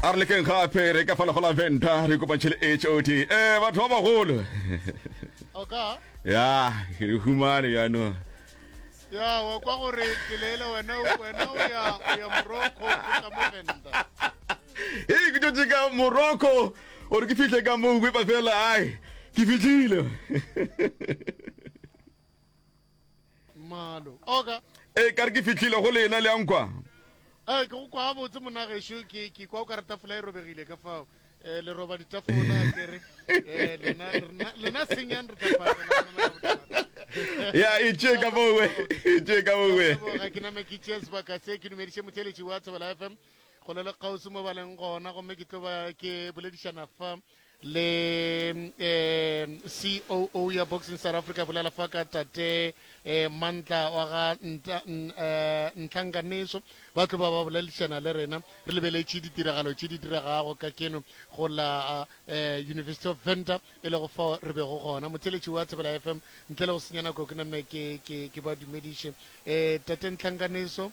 a re lekeng gape re ka fana go la venta re kopantšhe le hod um eh, batho ba bagolo oka ya re humane jaanong ya wa kwa gore peleele wena wena o ya o ya morocco o tla mo venda ee ke tšotse ka morocco gore ke fihle ka moo wepa fela ai ke fitlhile Malo. Oka. E ka re ke fitlhile go lena le ankwa. Eh ke go kwa botse monagesho ke ke kwa o ka re tafola e robegile ka fao. Eh le roba ditafola ke re eh lena lena senyang re tafola. Ya e tše ka bowe. E tše ka bowe. Ga ke name ke tšea sebaka se ke dumediše motheletši wa Thobela FM go le le kgauswi mo ba leng gona gomme ke tlo ba ke boledišana fa le um coo ya boxing south africa bolela fa ka tate um mantla wa ga ntlhankaneso eh, ba tlo ba ba bolelišana le rena re lebeletše ditiragalo tše di diragago ka keno go la eh, university of venter e lego fao re bego gona motheletši wa thebela f m ntle le go senya nako ke name ke ba dumediše um tate ntlhankaneso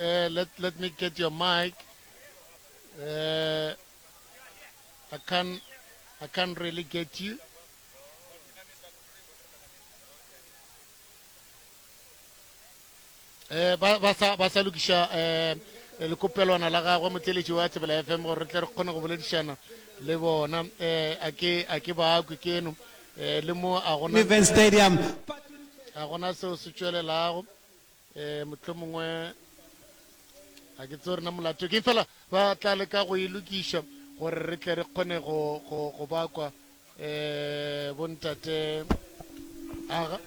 Uh, let, let me get your mic. Uh, I can't, I can't really get you. Eh, ba ba sa ba sa lokiša eh lekopelwana la gagwe motleletši wa tsebela fm gore re tle re kgone go boledišana le bona eh a ke a ke bakwe keno Ee, le mo a go na, Univen Stadium. ga go na seo se tšwelelago. Ee, mohlomongwe ga ke tseo rena molato ke fela ba tla leka go e lokiša gore re tle re kgone go, go, go ba kwa um bontate aga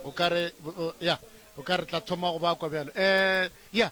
o ka re bo- o- ya o ka re tla thoma go ba kwa bjalo um ya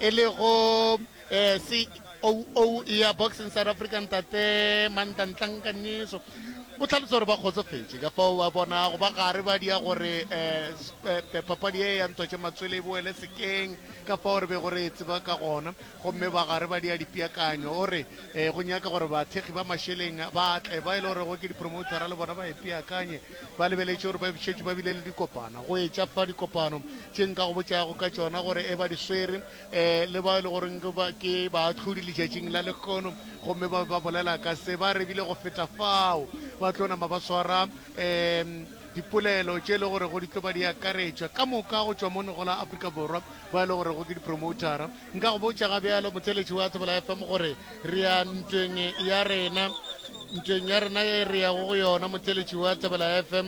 e le go coo ya boxing south africa ntate mantantlanka nyeso o tlhalosa gore ba kgotsofetše ka fao ba bona go ba gare ba dia gore um papadi e ya ntotše matswele e boele sekeng ka fao re be gore e tseba ka gona gomme ba gare ba dia dipeakanyo o re um go nyaka gore bathekgi ba mašeleng ba tle ba e le gorego ke dipromotera le bona ba e peakanye Ba lebeletše gore ba šetše ba bile le dikopana go etša fa dikopano tše nka go botšago ka tšona gore e ba di swere, um le bao e le goreng ke baahlodi letšatšing la lekgono, gomme ba be ba bolela ka se ba rebile go feta fao. Ba tlo nama ba swara um dipolelo tše e le gorego di tlo ba di akaretšwa ka moka go tšwa mono go la Afrika Borwa, ba e le gorego ke dipromoutara. Nka go botša ga bjalo motheletši wa Tsebela FM gore re ya ntweng ya rena, ntweng ya rena ye re yago go yona motheletši wa Tsebela FM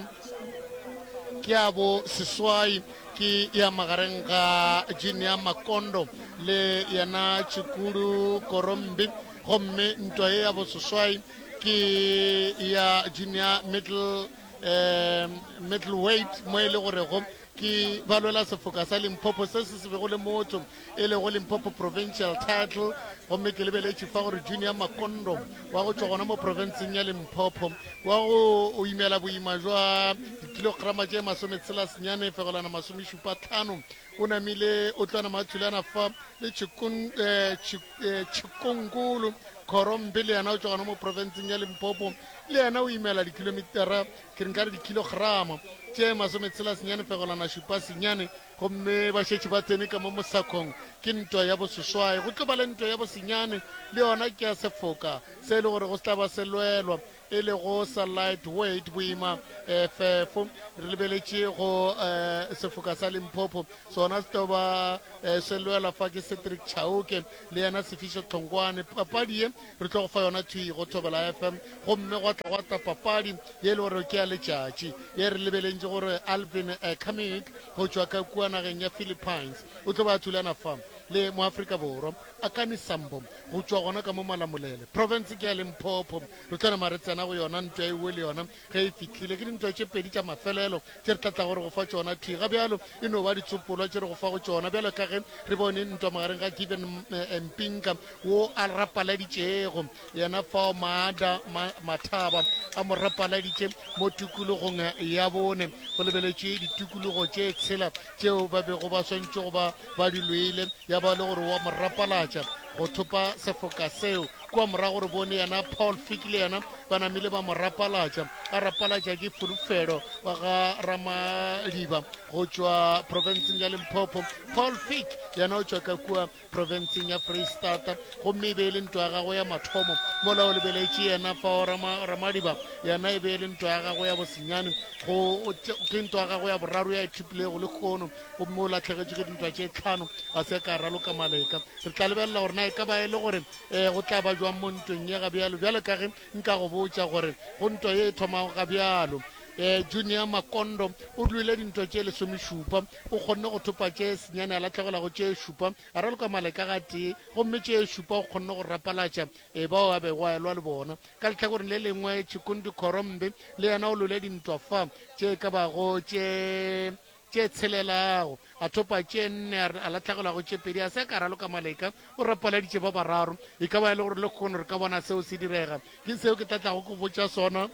ke ya bo seswai ke ya magareng ga Junior Makondo le yena Chikudu Korombi gomme ntwa ye ya bo seswai ke ya Junior Middle eh, middleweight mo e le gorego Ke ba lwela sefoka sa Limpopo se se se bego le motho e lego Limpopo Provincial Title gomme ke lebeletše fa gore Junior Makondo wa go tšwa gona mo profenseng ya Limpopo wa go o imela boima jwa dikilograma tše masometshela senyane fegolana masomešupa tlhano o namile o tla nama a thulana fa le Chikun, eh, Chik, eh, Chikungulu Khorombe le yena o tšwa gona mo profenseng ya Limpopo le yena o imela dikilomitara ke re nka re dikilogramo tše masometshelasenyane pegolwana šupa senyane gomme ba šetše ba tsene ka mo mosakong ke ntwa ya boseswai go tlo ba le ntwa ya bosenyane le yona ke ya sefoka se e le gore go se tla ba se lwelwa e le go sa light weight boima um fefo re lebeletše go um sefoka sa limpopo sona se tlo ba um se lwelwa fa ke cedric chauke le yena sefiso tlhonkwane papadi ye Re tlo go fa yona thwi go Thobela FM gomme gwa tla gwa tla papadi ye e le gore ke ya letšatši ye re lebelentše gore Alvin eh, Kamik go tšwa ka kua nageng ya Philippines o tlo ba a thulana fa le moafrika borwa Akani Sambo go tšwa gona ka mo Malamulele province ke ya Limpopo. Re tlo nama re tsena go yona ntwa e uwe le yona Ge e fihlile, ke dintwa tše pedi tša mafelelo tše re tla tlago re go fa tšona. Thwi ga bjalo e no ba ditsopolwa tše re go fago tšona, bjalo ka ge re bone ntwa magareng ga Given eh, Mpinka, wo a rapaladitšego yena fao Maada ma, Mathaba a mo rapaladitše mo tukulogong ya bone. Go lebeletšwe ditukulugo tše tshela tšeo ba bego ba swantšego ba, ba di lwele, ya ba le gore wa mo rapalatša go thopa sefoka seo. Kua morago re bone yena Paul Fick le yena ba namile ba mo rapalatša, a rapalatša ke Fulufhelo wa ga Ramadiba go tšwa profenseng ya Limpopo. Paul Fick yena o tšwa ka kua profenseng ya Freistata, gomme e be e le ntwa ya gagwe ya mathomo. Mola o lebeletše yena fao Rama, Ramadiba yena e be e le ntwa ya gagwe ya bosenyane, go, ke ntwa ya gagwe ya boraro ya e thipilego lehono. gomme o latlhegetše ke dintwa tše tlhano ga se ka raloka maleka re tla lebelela gore na e ka ba e le gore um go tla ba jwang mo ntweng ye ga bjalo bjale ka ge nka go botša gore go ntwa ye e thomago ga bjalo um junior makondo o dlwile dintwa tše lesomešupa o kgonne go thopa tše senyane a latlhegelago tše šupa a raloka maleka ga tee gomme tše šupa o kgonne go rapalatša e bao a bego a elwa le bona ka letlhakoreng le lengwe tšhikundi khorombe le yena o lwile dintwa fa tše ka bago tše tše tshelela go a thopa tše nne, a re a lahlegelwa go tše pedi, a se ka raloka maleka, o rapaladitše ba bararo. E ka ba e le gore lekgono re ka bona seo se direga. Ke seo ke tla tlago go botša sona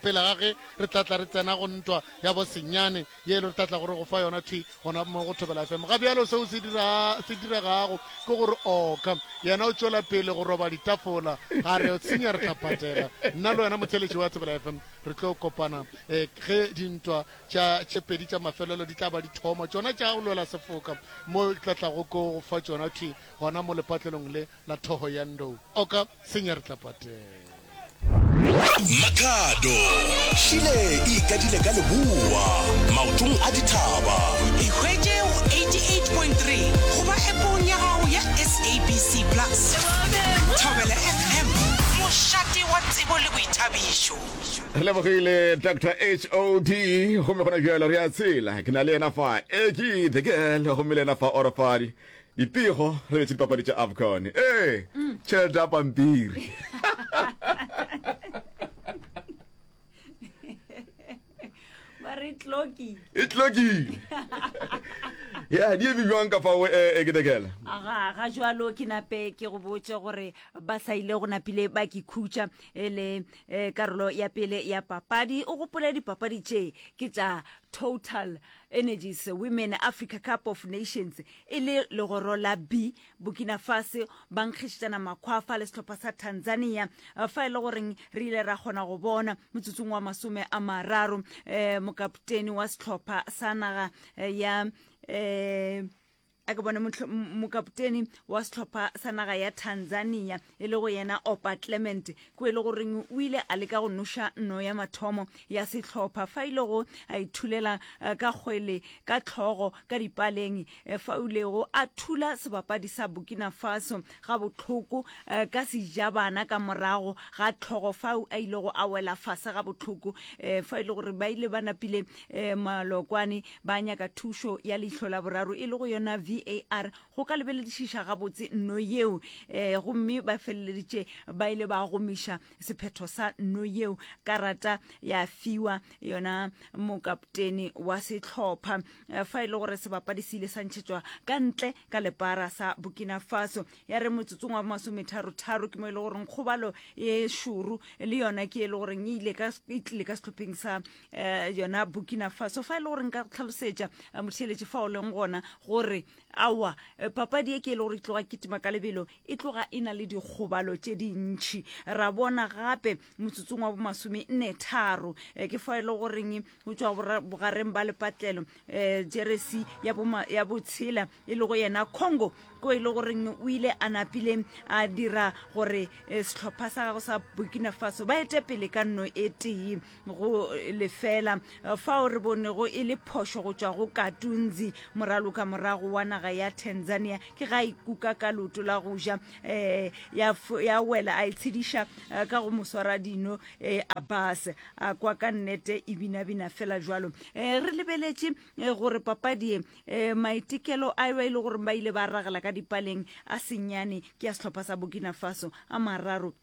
pele ga ge re tla tla re tsena go ntwa ya bosenyane ye e le re tla tlago re go fa yona thwi gona mo go thobela fm ga bjalo seo se dira se diregago ke gore oka yena o tšwela pele go roba ditafola ga re tsenya re tla patela nna le wena motheletši wa thobela fm re tlo kopana um ge dintwa Tša tše pedi tša mafelelo di tla ba dithomo tšona tša go lwela sefoka, mo di tla tlago ko go fa tšona thwi gona mo lepatlelong le la thoho ya ndou. Oka senya re tla patela. Makhado, Šile e ikadile ka leboa, maotong a dithaba. Ikhwetše go 88.3 goba App-ong ya gago ya SABC Plus. Thobela FM, mošate wa tsebo le boithabišo. Re lebogile Dr HOD gomme gona bjalo re a tshela ke na le yena fa e ke the girl gomme le yena fa orofadi dipego re betse dipapadi tša afcon ee tšhelete ya pampiri e tlokile ya di eme bjwang ka fao e ke the girl aga ga jalo ke nape ke go botse gore ba sa ile go napile ba ke khutša e le Ee, karolo ya pele ya papadi. O gopole dipapadi tše ke tša Total Energies Women Africa Cup of Nations e le legoro la B. Burkina Fase ba nkgišetšana makhwafa le sehlopha sa Tanzania fa e le goreng re ile ra kgona go bona motsotsong wa masome a mararo eh, mokapteni wa sehlopha sa naga eh, ya eh, a ke bone mokapoteni wa setlhopha sa naga ya tanzania e le go yena opa clement ko e le goreng o ile a leka go noša no ya mathomo ya setlhopha fa ile e go a ithulela eh, ka kgwele ka tlhogo ka dipaleng eh, fa o lego a thula sebapadi sa burkina faso ga botlhoko eh, ka sejabana ka morago ga tlhogo fao a ilego a wela fase ga botlhoko fa e le gore ba ile ba napile malokwane Ba nyaka thušo ya leihlo la boraro e le go yona VAR go ka lebeledišiša gabotse no yeo eh, gomme ba feleleditše ba ile ba gomiša sephetho sa no yeo. Karata ya fiwa yona mokaptene wa sehlopha eh, fa e le gore sebapadi se ile sa ntšhetšwa ka ntle ka lepara sa Burkina Faso. Ya re motsotsong wa bomasometharo-tharo ke mo e le goreng kgobalo e šoro le yona ke e le goreng e ile ka e tlile ka sehlopheng sa um yona burkina faso fa e le gore nka tlhalosetša eh, motheletše fa o leng gona gore awa eh, papadi ye ke e le gore e tloga kitima ka lebelo e tloga e na le dikgobalo tše dintšhi ra bona gape motsotsong wa bomasome nne tharo eh, ke fa e le goreng go tswa bogareng ba lepatlelo um jeresi ya botshela e le go yena congo ko e le goreng o ile a napile a dira gore setlhopha sa gago sa burkina faso ba ete pele ka nno e tee go lefela fao re bonego e le phošo go tšwa go katunzi moraloka morago wa naga ya tanzania ke ga ikuka ka loto la go ja um ya wela a itshediša eh, ka go moswara dino um eh, abas a kwa ka nnete e binabina fela jalo um re lebeletše gore papadie um maitekelo a ba e le gore ba ile ba ragela ka dipaleng a senyane ke ya setlhopha sa burkina faso a mararo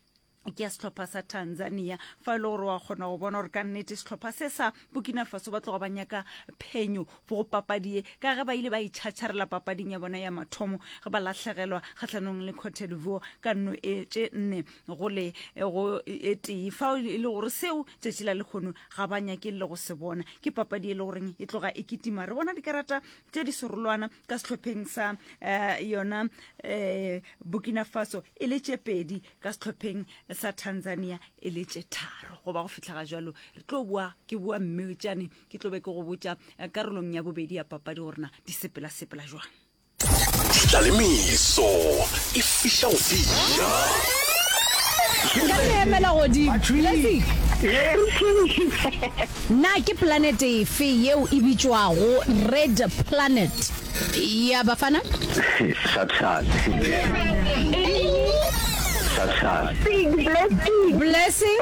ke ya sehlopha sa tanzania fa e le gore wa kgona go bona gore ka nnete sehlopha se sa burkina faso ba tloga ba nyaka phenyo go papadie ka ge ba ile ba itšhatšharela e papading ya bona ya mathomo ge ba lahlegelwa kgatlhanong le cote divoire ka nno e tše nne gole e go e tee fa e le gore seo tšatši la lekgono ga ba nyake le go se bona ke papadi e le goreng e tloga e kitima re bona dikarata tše di serolwana ka sehlopheng sa uh, yona uh, burkina faso e le tše pedi ka sehlopheng sa tanzania e le tše tharo goba go fitlhaga jalo re tlo boa ke boa mme tšane ke tlo be ke go botša eh, karolong ya bobedi ya papadi go rena di sepela-sepela jwang tlalemeso e fiša go fiša ka emela godimo Na ke planete efe yeo e bitšwago Red Planet ya Bafana? Blessing.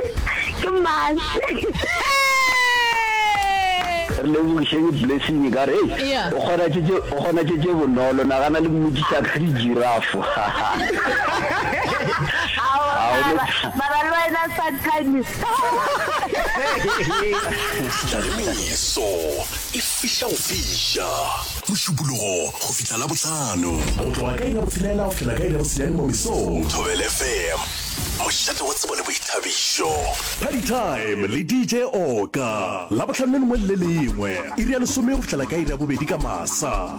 Re lebogišeng Blessing ka re ei Yeah. o kgona tše tše- o kgona tše tše bonolo nagana le mmotšiša ka di-giraffe. Ao, Ao, mara- mara le wena sometimes Tlalemeso e fihla go fiša. Mošupologo go fihla Labohlano. Go tloga ka iri ya botshelela go fihla ka iri ya bosenyane mo mesong. Thobela FM, mošate wa tsebo le boithabišo. Party Time le DJ Oka. Labohlano le lengwe le le lengwe, iri ya lesome go fihlela ka iri ya bobedi ka masa.